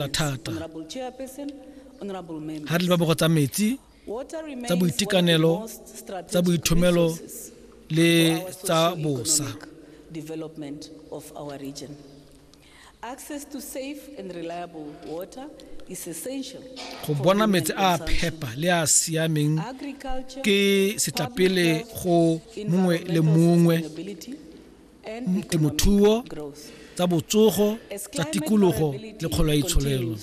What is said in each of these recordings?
thata ga re le babogo tsa metsi tsa boitekanelo tsa boithomelo le tsa bosa development of our region. Access to safe and reliable water is essential. Go bona metsi a phepa le a siameng ke setlapele go mongwe le mongwe temothuo, tsa botsogo, tsa tikologo le kgolo ya itsholelo.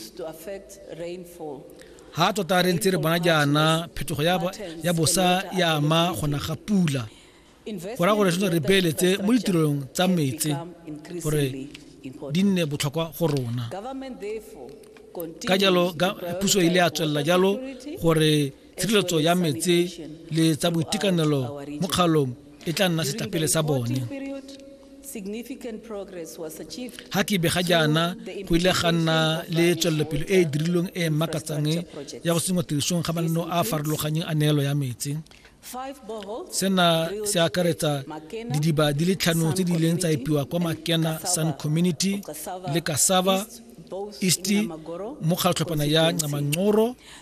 Ha tota re ntse re bona jaana phetogo ya bosa ya ama gona ga pula go raya gore re re beeletse mo ditirong tsa metsi gore di nne botlhokwa go rona ka jalo puso e ile ya tswelela jalo gore tshireletso ya metse le tsa boitekanelo mo kgalong e tla nna setlapele sa bone ga ke bega jaana go ile ga nna le tswelelopele e e dirilweng e e makatsang ya go sengwa tirisong ga mananeo a a farologanyeng a neelo ya metsi sena se akaretsa didiba di le tlhano tse di ileng tsa epiwa kwa makena sun community le kasava east mo kgatlhophana ya ncamanqoro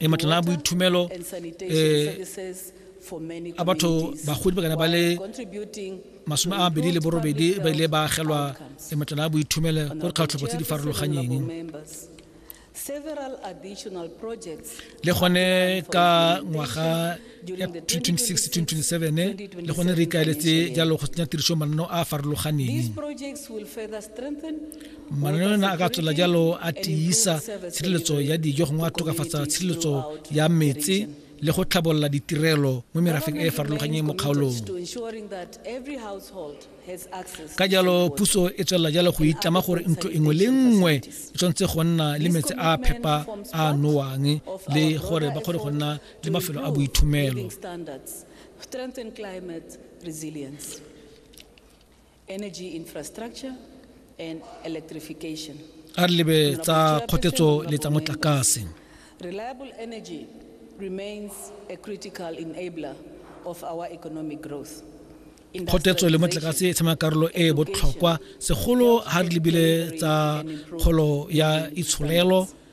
e matlana a boithumelo um a batho bagodi ba kana ba le masome a mabedi le borobedi ba ile ba agelwa e matlana a boithumelo ko dikgatlhopo tse di farologanyeng le gone ka ngwaga ya 2026-2027 le gone re ikaeletse jalo go tsenya tiriso mananeo a a farologaneng mananeo ana a ka tswela jalo a tiisa tshireletso ya dijo gongwe a tokafatsa tshireletso ya metse le go tlhabolola ditirelo mo merafeng e e farologanyeng mo kgaolong ka jalo puso e tswelela jalo go itlama gore ntlo engwe le nngwe e tshwanetse go nna le metsi a phepa a nowang le gore ba kgone go nna le mafelo a boithumelo strengthen climate resilience energy infrastructure and electrification a re lebe tsa kgotetso le tsa motlakase reliable energy remains a critical enabler of our economic growth kgotetso le motlakase e tshema karolo e e botlhokwa segolo ga re lebile tsa kgolo ya itsholelo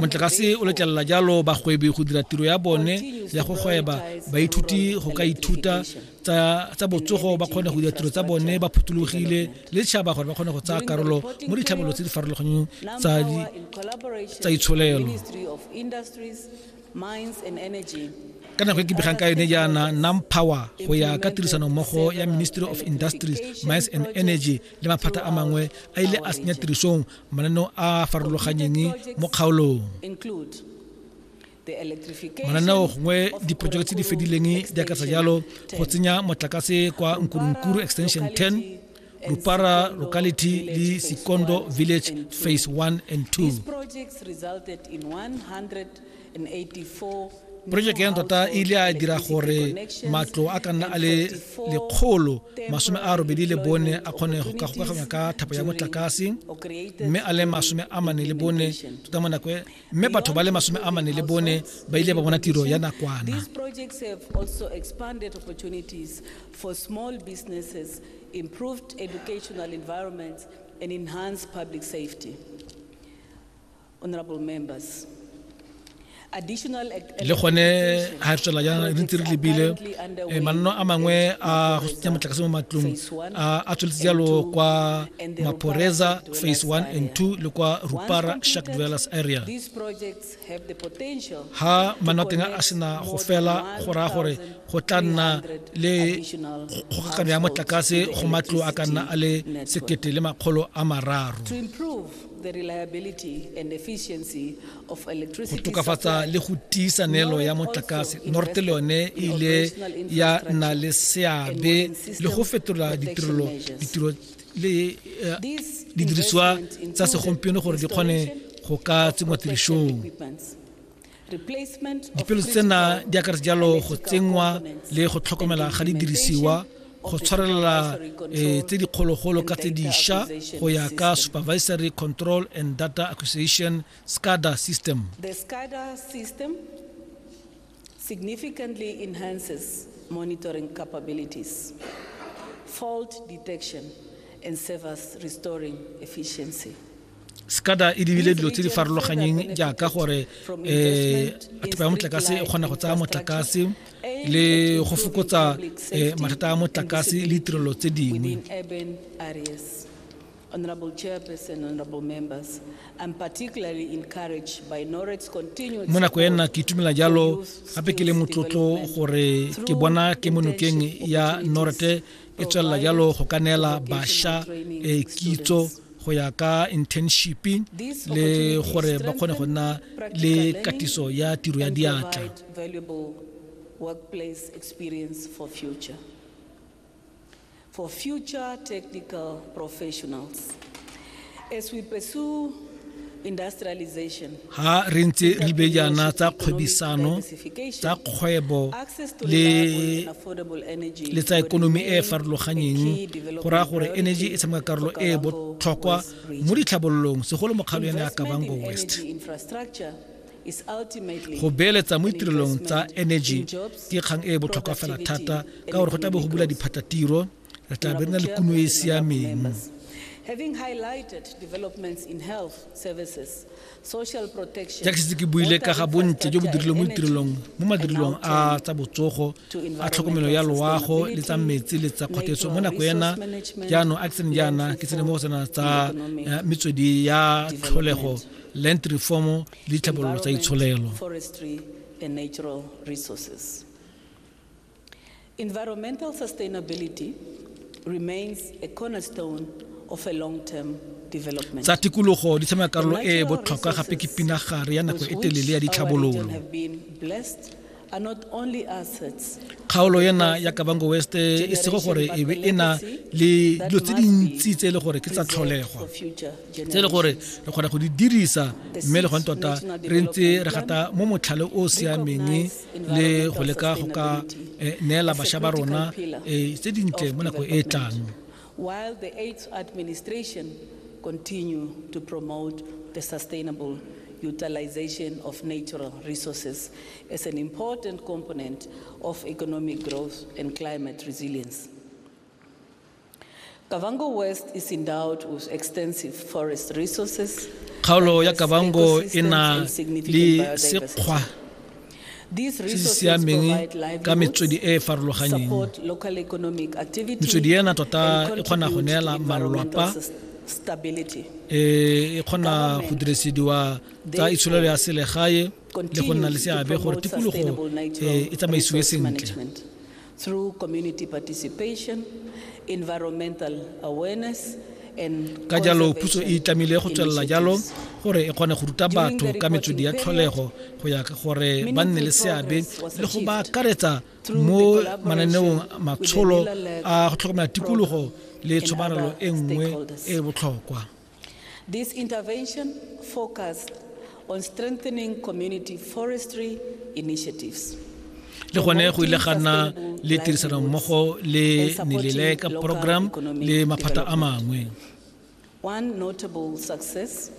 motlakase o letlelela jalo bagwebi go dira tiro ya bone ya go gweba baithuti go ka ithuta tsa botsogo ba kgone go dira tiro tsa bone ba phuthologile le tšhaba gore ba kgone go tsaya karolo mo ditlhabololo tse di farologaneng tsa itsholelo ka nako e ke begang ka yone jaana nam power go ya ka tirisanommogo ya ministry of industries mines and energy le maphata a mangwe a ile a senya tirisong mananeo a a farologanyeng mo kgaolong mananeo gongwe diprojeke tse di fedileng di akatsa jalo go tsenya motlakase kwa nkurunkuru extension 10 rupara locality le sikondo village phase 1 and 2 Projeke ya ntota e ile a dira gore matlo a ka nna a le lekgolo masome a robedi le bone a kgone go ka gokaganywa ka thapo ya motlakase mme a le masome a mane le bone tota mo nako e, mme batho ba le masome a mane le bone ba ile ba bona tiro ya nakwana improved educational environments and enhanced public safety le gone ga re tswela jaana re ntse re lebile eh, manno a mangwe a go tsenya motlakase mo matlong a tsweletse jalo kwa maphoreza phase 1 and 2 le kwa rupara shark dwellers area ha manno a teng a sena go fela go raya gore go tla nna le kgokagano ya motlakase go matlo a ka nna a le sekete le makgolo a mararo go tokafatsa le go tiisa neelo ya motlakase north le yone e ile ya nna le seabe le go fetola ditirelo ditiro le eh, didirisiwa tsa segompieno gore di kgone go ka tsenngwa tirisong dipelo tsena di akaretsa jalo go tsenngwa le go tlhokomela ga didirisiwa go tshwarelela eh, tse dikgologolo ka tse diša go ya ka supervisory control and data acquisition scada system significantly enhances monitoring capabilities fault detection and service restoring efficiency sekada e lebile dilo tse di farologanyeng jaaka gore um eh, thepa ya motlakase e kgona go tsaya motlakase le go fokotsa um mathata a motlakase le ditirelo tse dingwe Honorable Chairperson, Honorable Members, I'm particularly encouraged by NOREX continued Mo nako ena ke itumela jalo gape ke le motlotlo gore ke bona ke monokeng ya Norete e tswelela jalo go ka neela bašwa eh, kitso go ya ka internship le gore ba kgone go nna le katiso ya tiro ya diatla workplace experience for future. For future technical professionals, As we pursue ha re ntse re bejana tsa kgwebisano tsa kgwebo le le tsa ekonomi e e farologanyeng go raya gore energy e tshameka karolo e e botlhokwa mo ditlhabololong segolo mokgatlho ya ne ya kabango west go beeletsa mo ditirelong tsa energy ke kgang e e botlhokwa fela thata ka gore go tla be go bula diphatatiro re tla be re na le kuno e e siameng Having highlighted developments in health services, social protection, jaaka setse ke buile ka ga bontle jo bo dirilweng mo ditirelong mo madirelong a tsa botsogo a tlhokomelo ya loago le tsa metsi le tsa kgothetso mo nako ena jaanong a ke tsene jaana ke tsene mo go tsena tsa eh, metswedi ya tlholego land reform le ditlhabololo tsa itsholelo forestry and natural resources. Environmental sustainability remains a cornerstone of a long-term development. Tsa tikologo di tshameka karolo e e botlhokwa gape ke pinagare ya nako e telele ya ditlhabololo. Kgaolo ena ya Kavango West e sego gore e be e na le dilo tse dintsi tse e le gore ke tsa tlholegwa tse e le gore re kgona go di dirisa mme le gone tota re ntse re gata mo motlhale o o siameng le go leka go ka eh, neela basha ba rona eh, tse dintle mo nako e e tlang while the AIDS administration continue to promote the sustainable utilization of natural resources as an important component of economic growth and climate resilience. Kavango West is endowed with extensive forest resources. Kgaolo ya Kavango e na le sekgwa se se siameng ka metswedi e e farologanyeng metswedi ena tota e kgona go neela malwapa e, e kgona go dirisediwa tsa itsholelo ya selegae le go nna le seabe gore tikologo e, e tsamaisiwe sentle through community participation, environmental awareness, and ka jalo puso e itlamile go tswelela jalo gore e kgone go ruta batho ka metswedi ya tlholego go ya gore ba nne le seabe le go ba akaretsa mo mananeong matsholo a go tlhokomela tikologo le tshomarelo e nngwe e e botlhokwa This intervention focused on strengthening community forestry initiatives. le gone go ile ga nna le tirisanommogo le nelele ka program le maphata a mangwe One notable success